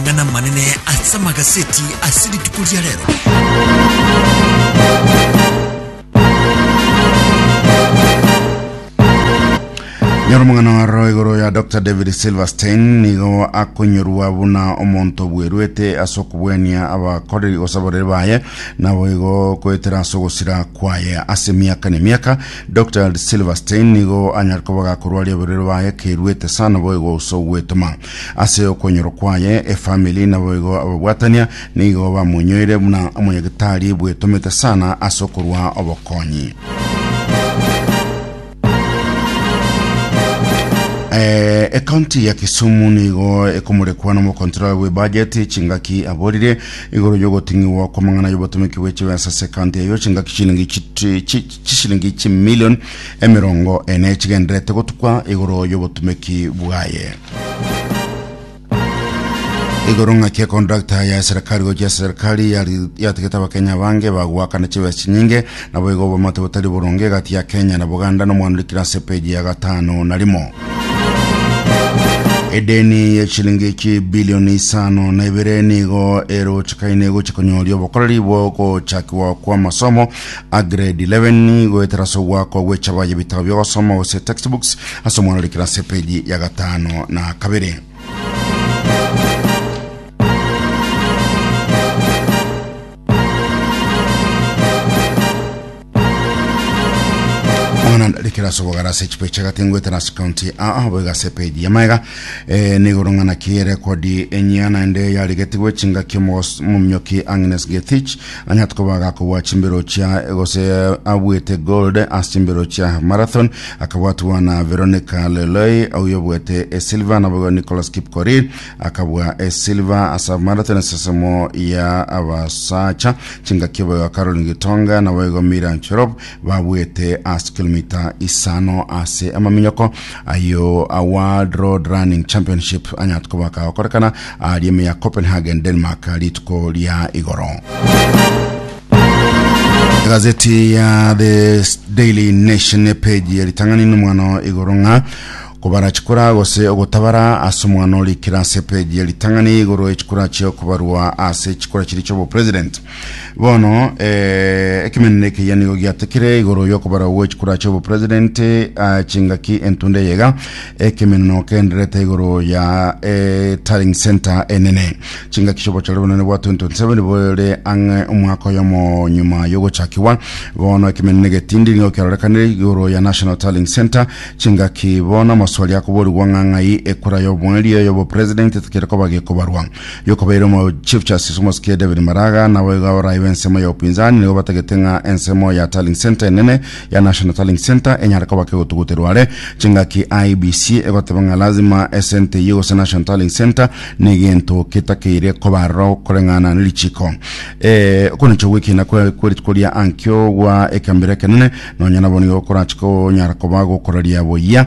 Amang'ana amanene ase amagaseti ase rituko ria rero. Nyora omong'ana waro igoro ya Dr. David Silverstein nigo akonyorwa buna omonto obweruete ase okobwania abakoreri gose abareri baye nabo igo koetera ase ogosira kwaye ase emiaka na emiaka Dr. Silverstein nigo anyare koba gakorwaria oborere baye keruete sana boigo ase ogwetoma Ase okwonyorwa kwaye, efamili naboigo ababwatania nigo bamonyoire buna omonyagitari bwetomete sana ase okorua obokonyi. Eh, ekaunti ya Kisumu nigo ekomorekwa nomokontrola bw'ebajeti chingaki aborire igoro y'ogoting'igwa kw'amang'ana y'obotomeki bw'echibesa ase ekaunti eyo chingaki chilingi chiti- chi- chisilingi chimilion emerongo ene chigenderete gotukwa igoro y'obotumeki bwaye igoro ng'aki ekontrakta ya serikali gochia serikali yari- yatigete abakenya bange bagoakana chibesa chinyinge nabo igo obomate botari boronge gati ya kenya na buganda nomwanurikira ase peji ya gatano na rimo edeni ya chilingi chi bilioni isano na ibere nigo erochekaine gochia konyoria obokoreri bwo gochakigwa kw'amasomo a grade 11 goetera ase ogwakwa gw'echaba y'ebitabo bi'ogosoma gose textbooks ase omwana orikire ase epeji ya gatano na kabere mwana ndarikira ase obogara ase echipe chagati ngoetera ase county aa boiga ase epeji ya maega eh, nigoro ng'ana kiere kodi enyia naende yarigetigwe chingaki omogos- omominyoki agnes gethich Onye tokoba agakobua chimbero chia gose abuete gold ase chimbero chia marathon akabwatwa na Veronica Leloi oyobuete esilver naboigo Nicholas Kipkorir akabua esilver asa marathon esesemo ya abasacha chingaki oboigo Caroline Gitonga naboigo Mira Cherop babuete ase kilomita isano ase amaminyoko ayo a World Road Running Championship anyate koba akagokorekana aria ime ya Copenhagen, Denmark rituko ria igoro. Egazeti ya The Daily Nation epeji eritang'ani n'omwano igoro ng'a kobara chikura gose ogotabara ase omwano rikira ase epeji eritang'ani igoro echikura chio kobarwa ase chikura chiri chiobopresident. Bono eh, ekemenero ekeyia nigo giatekire igoro y'okobarwa gwe chikura ch'obo president ah, chingaki entunde yega ekemenero kenderete igoro ya eh, Tarling Center enene chingaki ch'obochore bonene bwa 2027 bore ang'e omwaka oyomo nyuma y'ogochakiwa bono ekemenero egetindi nigo kiarorekanire igoro ya National Tarling Center chingaki bono amaswali akoborigwa ng'ang'ai ekura y'obwerio y'obo president etekire koba gekobarwa Yokobeire omo Chief Justice omosike David Maraga naboiga orayi bensemo ya upinzani nigo batagete ng'a ensemo ya Tallying Centre enene ya National Tallying Centre enyare koba kegotuguterwa are chingaki IEBC egoteba ng'a lazima esente eyio gose National Tallying Centre negento ketakeire koba aroro koreng'ana nerichiko eh, okonecha gwekina kweritkoria ankio gwa ekambira ekenene nonya nabo nigo korachiko onyara koba gokoraria boyia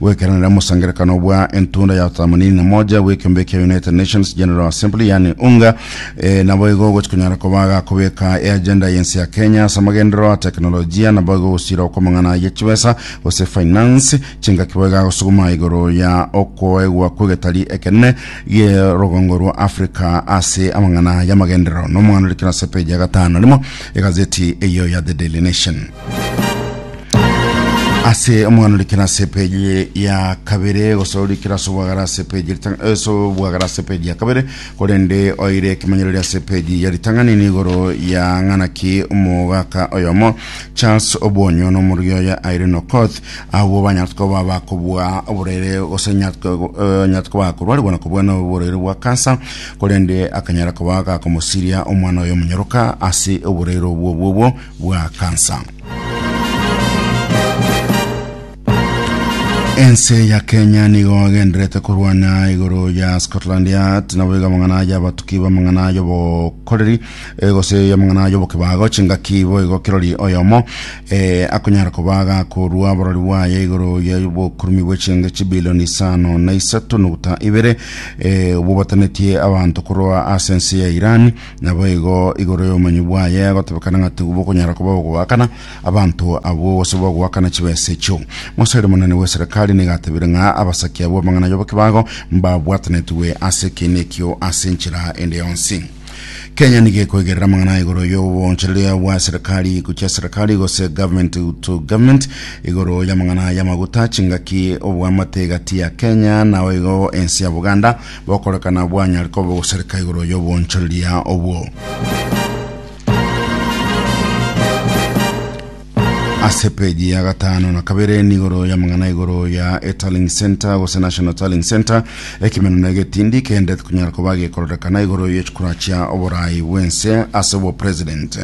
Goikaranera omosangererekano bwa entunda ya themanini na moja bw'ekeombe kia United Nations General Assembly yaani UNGA eh, naboigo ogochi konyara koba gakobeka eagenda y'ense ya Kenya ase amagenderero a tekinolojia naboigo ogosira okw'amang'ana ye chibesa gose finance chingaki boigo agosuguma igoro ya okoegwa kw'egetari ekenene gerogongo rwa Africa ase amang'ana y'amagenderero nomoanori kera ase peji ya gatano rimo egazeti eyo ya The Daily Nation. ase omwana rikira ase peji ya kabere gosoro rikira ase obwagara ase peji rita- eh, ase obwagara ase peji ya kabere korende oire ekemenyero ria ase peji ya ritang'ani nigoro ya ng'ana ki omogaka oyomo charles obonyo na omorugi oye aire nokoth agwo banyartuko baba kobua oborere gose nyartuko eh, nyartuko bakorwarigwa na kobua na oborere bwa kansa korende akanyara koba gakomosiria omwana oyo omonyoroka ase oborere obwo obwo obwo bwa kansa. Ense ya Kenya nigo agenderete korwana igoro ya Scotland Yard nabo iga amang'ana ayo abatuki b'amang'ana ayo bokoreri eh, gose y'amang'ana ayo bokibago chingaki bo igo kirori oyomo eh, akonyara koba gakorwa borori bwaye igoro ya bokurumi bw'echenge chibilioni isano na isato nuguta ibere eh, obwo botanetie abanto korwa ase ense ya Iran Naboigo igoro y'obomanyi bwaye agotebekana ng'a tibokonyara koba ogoakana abanto abwo gose bogoakana chibesa echio. Moseri monene bw'eserekari nigo atebire ng'a abasaki abwo amang'ana y'obokibago mbabwatanetigwe ase ekeene ekio ase enchera ende yonsi. Kenya nigo ekoigerera amang'ana igoro y'obonchereria bwa eserekari gochia eserekari gose government to government igoro y'amang'ana y'amaguta, chingaki, oboamate egati ya Kenya naoigo ense ya Buganda Bokorekana bwanyare koba ogosareka igoro y'obonchoreria obwo. ase peji ya gatano na kabere nigoro ya mang'ana igoro ya etalling center gose national talling center ekimeno na egetindi kende kunyara koba gekororekana igoro yechikura chia oborai bwense ase obo president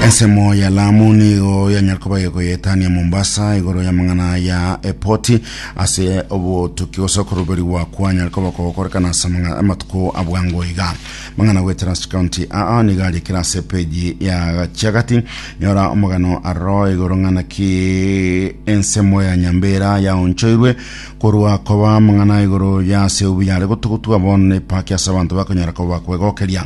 Ensemo ya Lamu nigo yanyara koba egoyetania Mombasa igoro y'amang'ana ya epoti ase obotuki gose okoruberigwa kwanyara koba kogokorekana ase amang'a- amatuko abwango iga mang'ana gwe Trans County aa nigo arikire ase peji ya gachiagati nyora omogano aroro igoro ng'ana ki ensemo ya Nyambera yaonchoirwe korwa koba amang'ana igoro ya ase obuya are gotugutwa bono nepaki ase abanto bakonyara koba kwegokeria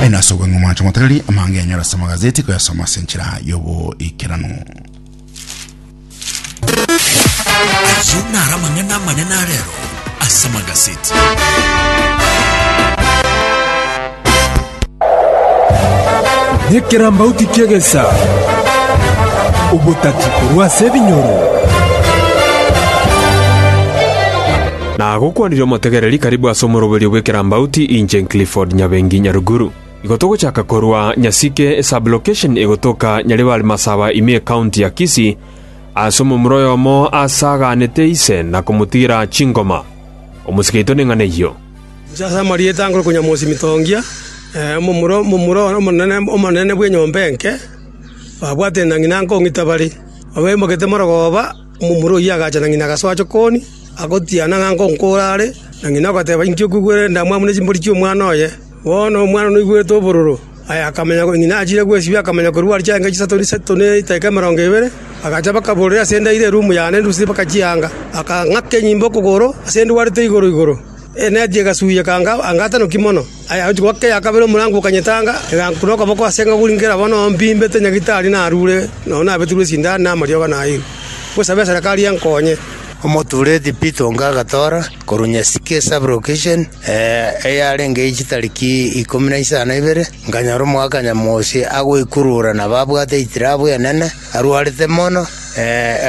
Aye nase obong'e omwancho motareri amanga enyora ase amagazeti koyasoma ase enchera y'oboikeranu. Ayio naro amang'ana amanene arero ase amagazeti. Nekerambauti kiegesa obotati korwa ase ebinyoro. Na agokwanire omotegereri karibu ase omoroberio bw'ekerambauti inche Clifford Nyabengi Nyaruguru. Igo togochaka korwa Nyasike sub-location egotoka Nyaribari Masaba ime ecounty ya Kisii ase omomura oyomo aase aganete ise na komotigera chingoma. Omosike oito neng'ana eyio. Inche ase amarieta nkore Konyamosi Mitongia, omomura omomura one omonene omonene bw'enyomba enke, babwate na ng'ina nkong'ita bare, babe mbagete morogoba, Omomura oyio agacha na ng'ina agasoa chokoni, agotiana ng'a nkonkoora are, na ng'ina agateba, Inki okwigwera endamwamu ne chimbori chi'omwana oye? Bono omwana noigwete obororo. Aye akamanya korwa ng'ina achire kwesibia, akamanya korwa are chianga chisato chisato ne edaika emerongo ebere. Agacha bakaborera ase endairo erumu yane endusirie bakachianga, akang'aka enyimba okogoro ase ndwarete igoro igoro. Enati egasuya ekanga anga atanoki mono. Aye goika eya kabere omorango okanyetanga, egankuna okoboko ase eng'e oguri nkera bono mbimbete nyagitari narure nonya nabetirwe esindani na amariogo nairwe. Ngosabe eserekari enkonye. Omotureti Peter Onga agatoora korwa Nyasike Sub-Location, eyarenge ye chitariki ikomi na isano na ibere, nkanyora Omogakanyanyamosi agoikurura na babwate eitirabu enene, arwarete mono.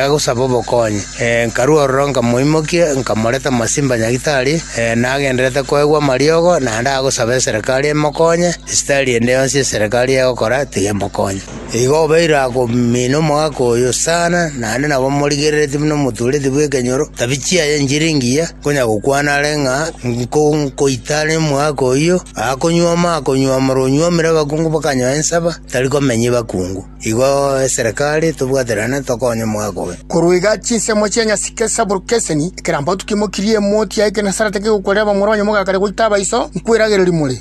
agosaba obokonyi. Nkarua ororo nkamoimokia, nkamoreta Masimba Nyagitari, nagendererete koegwa amariogo, naende agosaba eserekari emokonye, esitari ende yonsi eserekari egokora tigemokonya. Igo obeire akomina omogaka oyo sana, naende nabo morigereretie buna omotuureti bw'ekenyoro, tabi chiaye nchire engiya, konya gokwana are ng'a nkoita are omogaka oyio, akonywoma akonyuomora onyuomire abakungu bakanyoa ensaba, tari komenya abakungu. Igo eserekari etobwaterane tokonye omogaka oye. Korwa iga chinsemo chia nyasike ase borukia eseni, ekerambaotu kimokirie emoti ya ekenasaratwe kegokwerera abamura ba nyomogaka aria goita abaiso, Nkweragereria more.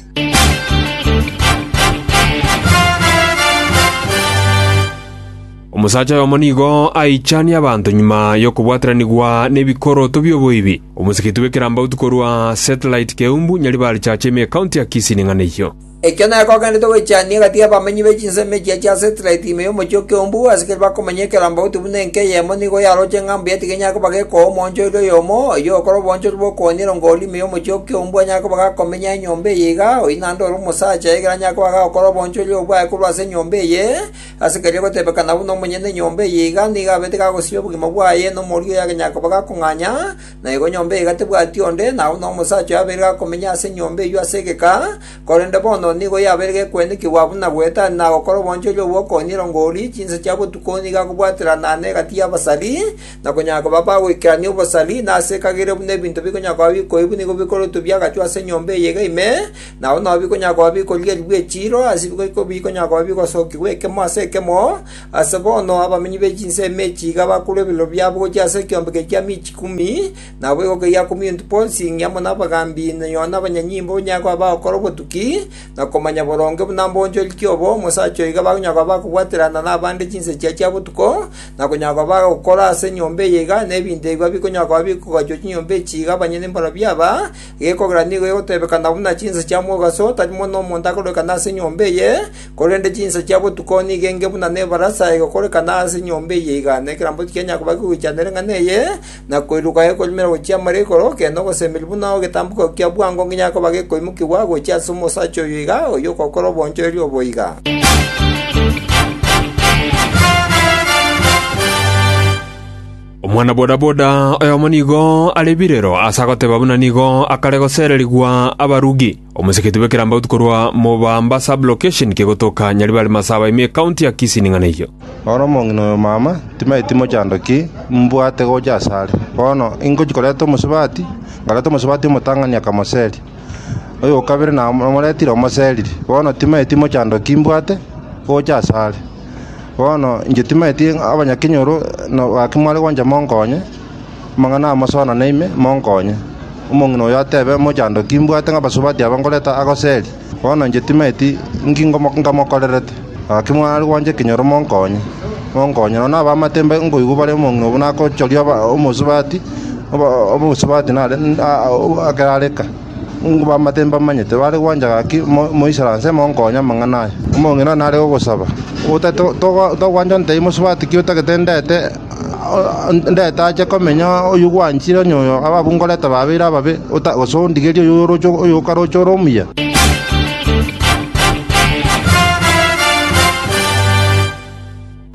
Omosacha oyomo nigo aichanie abanto nyuma y'okobwataranigwa n'ebikoroto bi'oboibi. Omosigeti bw'ekerambautu korwa Satellite Keumbu, Nyaribari Church ime County ya Kisii ning'ana eyio. Ekio nere kogenderete goichania egati y'abamenyi be chinsemo echia chia Setirite ime y'omochie o Keumbu, asikire bakomenya ekerogo goti buna enka eyemo nigo yaroche ng'a mbuya tigenyare koba gekoa omoonchoreria oyomo, oyio ogokora obonchori bw'okooniera ngoori ime y'omochie o Keumbu anyare koba gakomenya enyomba eye iga, oyio naende ore omosacha ekero anyare koba gagokora obonchori obwo bwaye korwa ase enyomba eye, ase keria gotebekana buna omonyene enyomba eye iga nigo abete gagosibia obogima bwaye, na omoria oyo agenyare koba gakong'anya, Na igo nyomba eyio gatebwati onde, na agwo nomosacha oyo abeire gakomenya ase enyomba eyio ase egeka, korende bono nigo yabeire gekwenikigwa buna goeta are nagokora obonchoria obwo okonyira ngoori, chinsa chia botuko nigo akobwaterana na egati y'abasari, na konyara koba bagoikerania obosari, na ase ekagere buna ebinto bikonyara koba bikoibwa nigo bikorutwa biagachwa ase enyomba eyio iga ime, na agwo nao bikonyara koba bikorierigwa echiiro, ase bikonyara koba bigosokigwa ekemo ase ekemo, Aase bono abaminyi be chinsemo echi iga bakorwa ebirero biabo gochia ase ekiombeke kia Miichi Kumi, na boigo keyia kumi into bonsi, ing' amo nabagambi, na nabanyanyimbo banyare koba bagokora obotuki, na komanya boronge buna mbonchoriti obo omosacha oo iga bakonyara koba bagokwaterana nabande chinsechia chia botuko, na konyara koba bagokora ase enyomba eye iga, na ebinto ebio bikonyara koba bikogachwa chinyomba echi iga abanyene mbarabwo aba, egekogera nigo egotebekana buna chinsa chia mogaso, tari mono omonto akorekana ase enyomba eye, Korende chinsa chia botuko nigo enge buna nebarasa egokorekana ase enyomba eye iga, na ekerambe tikianyara koba kegwechana ere ng'ana eye, na koiroka ekonywera gochia amare igoro, ekeene ogosemeria buna egetambuko kia bwango nginya koba gekoimokigwa gochia ase omosacha oyo iga, oyio ogokora obonchoeri obo iga. Omwana bodaboda oyomo nigo are birero ase agoteba buna nigo akare gosererigwa abarugi. Omoseketi bw'ekerambauti korwa Mubamba sub-location kegotoka Nyaribari Masaba ime County ya Kisii ning'ana eyio. Ore omong'ina oyo mama timaeti mochando ki mbwate gocha asare. Bono ingochi koreta omosubati, nkareta omosubati omotang'ani akamoseria. Oyokabere namoretire omoseriri, bono timaeti mochando ki mbwate gocha asare. Bono inche timaeti abanya kinyoro no gaki mware goncha monkonye. Amang'ana amo sona naime, monkonye. Omong'ina oyo atebe, Mochando, kimbwate ng'abasubati aba ngoreta agoseri, bono inche timanyeti inki ngamokorerete. Gaki mwana aria gwancha ekenyoro monkonye. Monkonye, nonya abamatemba nkoigwa bare omong'ina buna agochoria omosubati, omosubati nare ake areka. Nigo bamatebi mbamanyete bare gwancha gaki moisera nse monkonye amang'ana aya. Omong'ina one nare gosaba, Togwancha ntei mosubati ki otagete ndete ndete ache komenya oyio gwanchire onye oyo ababu ngorete babeire ababe gose ondigerie oyo okaroche ore omuya.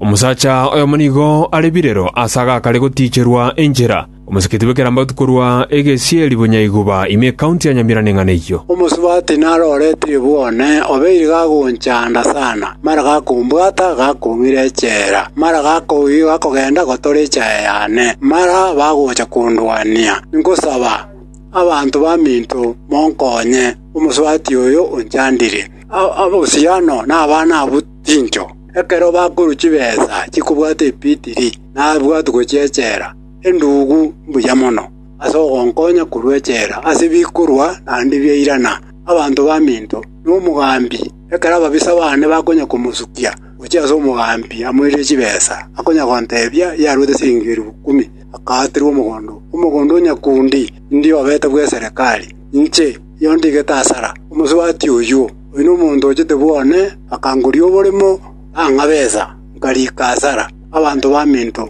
Omosacha oyomo nigo are birero ase agakare gotiicherwa enchera. Omoseketi bw'ekerambatu korwa egesieri Bunyaihuba ime ekaunti ya Nyamira neng'ana eyio. Omosubati narorete ebuone obeire gagonchanda sana, mara gakombwata gakong'ira echela, mara gakogenda gotora echaye yane, mara bagocha kondwania. Nkosaba, abanto baminto, monkonye, omosubati oyo onchandire. Abosiano nabana abwo chincho, ekero bakorwa chibesa chikobwata epitiri, nabwatwe gochia echela. Endugu, mbuya mono ase ogonkonya korwa echela ase bikorwa naende bia irana. Abanto baminto nomogambi, ekero ababisa baane bakonya komosukia gochia ase omogambi amoirire chibesa, akonya gontebia yaruete chiringi elifu ikomi akaaterwe omogondo. Omogondo o nyakundi indio obete bw'eserekari. Inche erio ndigete asara. Omosubati oyio, oyio nomonto ochete bwone, akangoria oboremo, nang'a besa, nkariika asara. Abanto baminto.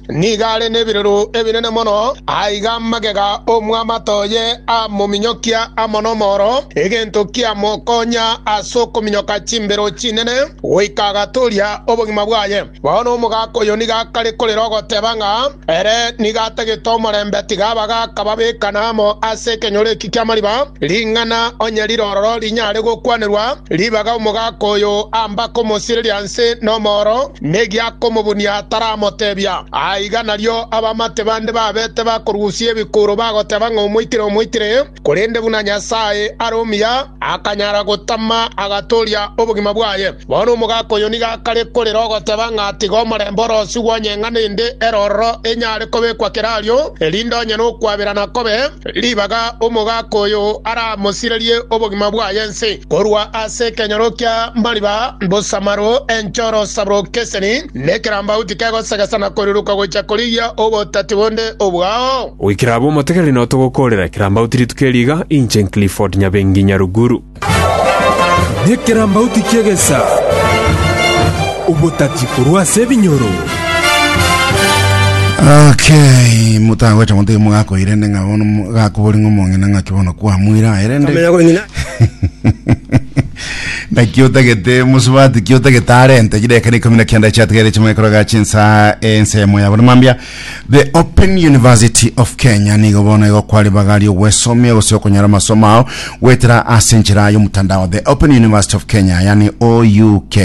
Nigo are nebirero ebinene mono, aiga amagega omwamato oye amominyokia amo nomooro, egento kiamokonya ase okominyoka chimbero chinene, goika agatooria obogima bwaye. Bono omogaka oyo nigo akare korera ogoteba ng'a ere nigo atagete omorembe, tiga abagaka babekane amo ase ekenyoro eki ki'amariba, ring'ana onye rire ororo rinyare gokwanerwa ribaga omogaka oyo ambake omosireria nse nomooro. negiakomobunia ataramotebia. Aiga nario abamate bande babete bakorusia ebikuro bagoteba ng'a omoitire, omoitire, korende buna Nyasae are omuya, akanyara gotama, agatooria obogima bwaye. Bono omogaka oyo nigo akare korera ogoteba ng'a tiga omorembe orosigwe onye ng'a nende ere ororo enyare kobekwa kerario, erinde onye nokwaberana kobe ribaga omogaka oyo aramosirerie obogima bwaye ense. Korwa ase ekenyoro kia mariba mbosamaru enchoro sabro keseni, na ekerambauti kegosegesa na koruruka gochia korigia obotati bonde obwao. Goikera abwo motegere no togokoorera ekerambauti rituko eri iga, inche Clifford Nyabengi Nyaruguru. Nekerambauti kiegesa, obotati korwa ase ebinyoro. Okay, motagwete motige mogakoirende ng'a bono mo- gakobori ng'a omong'ina ng'aki bono kwamuira aye rende Kamenya kong'ina. naki otagete mosubati ki otagete arente chideka nikumi na kianda chiatigere chimwekoroga chinsa ensemo yabo namambia the open university of kenya nigo bono igokwari bagari ogwesomia gose okonyora amasomo ao gwetera ase enchera y'omotandao the open university of kenya yani ouk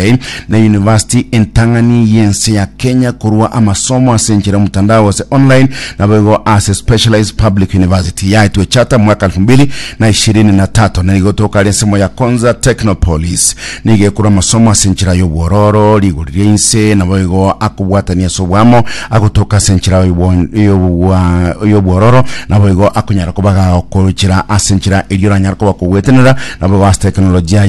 na university entang'ani y'ense ya kenya korwa amasomo ase enchera y'omotandao gose online nabo igo ase specialized public university yaetwe chata mwaka 2000 na ishirini na tato nigo toka ase ensemo ya Konza Technopolis. Nigo ekorwa amasomo ase enchera y'obwororo, rigori ria inse, naboigo akobwatania ase oboamo, agotoka ase enchera y'obwororo, naboigo akonyara kobaga okochera ase enchera eria oranyare koba okogwetenera, naboigo ase teknolojia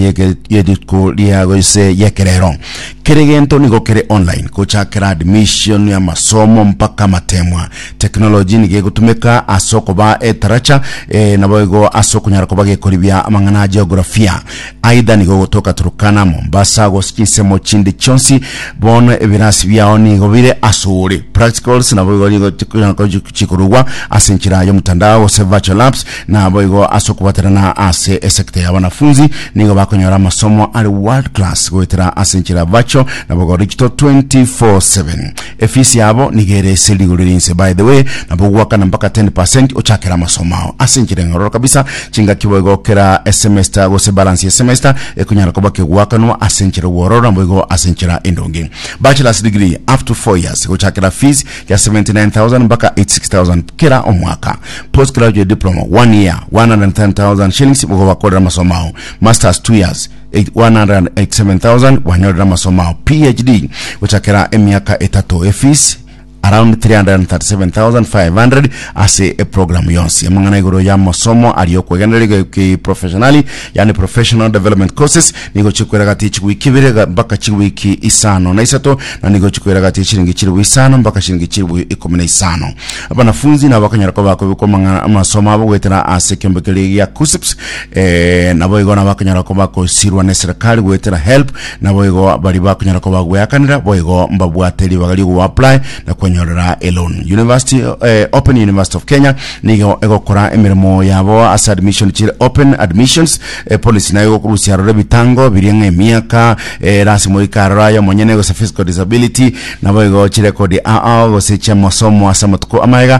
yeriko ria gose yekerero. Kere gento nigo kere online, gochakera admission, amasomo, mpaka amatemwa. Technology nigo egotumeka ase okoba etaracha eh, naboigo ase okonyara koba gekoribia amang'ana a geografia. Aidha nigo ogotoka Turkana, Mombasa, gose chinsemo chinde chionsi, bono ebirasi biao nigo bire ase ore. Practicals naboigo nigo chikonyara ko- chikorugwa ase enchera y'omotandao gose virtual labs, naboigo ase okobaterana ase esekta ya wanafunzi nigo bakonyora amasomo are world class goetera ase enchera virtual naboigo digital 24/7. Efees yabo nigo ere ase rigori rinse by the way, nabo ogwakana mpaka 10 percent ochakera amasomo ao. Ase enchera enyororo kabisa, chingaki boigo kera esemester gose balance ye semester ekonyara koba kegwakanwa ase enchera obwororo naboigo ase enchera endonge. Bachelor's degree up to 4 years gochakera fees ya 79,000 mpaka 86,000 kera omwaka. Post graduate diploma 1 year 110,000 shillings bogobakorera amasomo ao. Masters 2 years 187,000 bwanyorire amasomo ao PHD gochakera emiaka etato efees around 337,500 ase eprogramu yonsi amang'ana igoro y'amasomo aria okwegenderera kiprofessionali yani professional development courses nigo chikwiragatia chiwiki ibere ga- mpaka chiwiki isano na isato na nigo chikwiragatia chiringi chilifu isano mpaka chiringi chilifu ikomi na isano abanafunzi nabo bakanyara koba bakobekwa amang'a- amasomo abo goetera ase ekeombe keria gia KUSPS Ee, naboigo nabakonyara koba kosirwa neserekari goetera help, naboigo bari bakonyara koba gweakanera boigo mbabwate ribaga riogo apply na kwenyorera elon. University eh, Open University of Kenya nigo egokora emeremo yabo ase admission chire open admissions eh, policy nayo egokorusia aroro ebitango biria ng'a emiaka eh, rasi moika aroro ayo monyene gose physical disability naboigo chirekodi ao gose chiamasomo ase amatuko amaega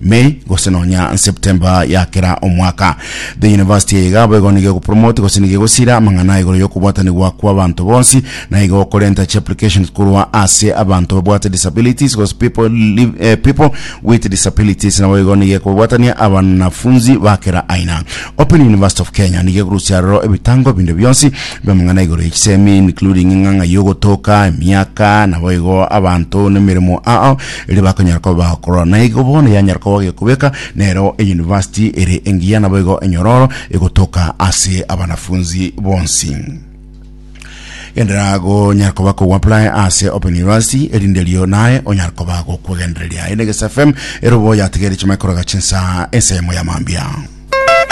May, gose nonya September ya kera omwaka. The university eye iga boigo nigo egopromote gose nigo egosira amang'ana igoro y'okobwatanigwa kw'abanto bonsi, na igo okorenta chiapplications korwa ase abanto babwate disabilities gose people, live, eh, people with disabilities. Naboigo nigo ekobwatania abanafunzi ba kera aina. Open University of Kenya nigo ekorusia aroro ebitango ebinde bionsi bi'amang'ana igoro y'echisemi including eng'ang'a y'ogotoka, emiaka, naboigo abanto nemeremo ao. erio bakonyara koba bagokorora. Na igo bono yanyara koba gekobeka nero eyunivasiti ere engiya, naboigo enyororo egotoka ase abanafunzi bonsi. Genderera gonyara koba koguapply ase Open University, erinde erio naye onyara koba gokwegendereria. Eye na Egesafe FM, ere oboyategeire chimanye koroga chinsa ense yamo ya mambia.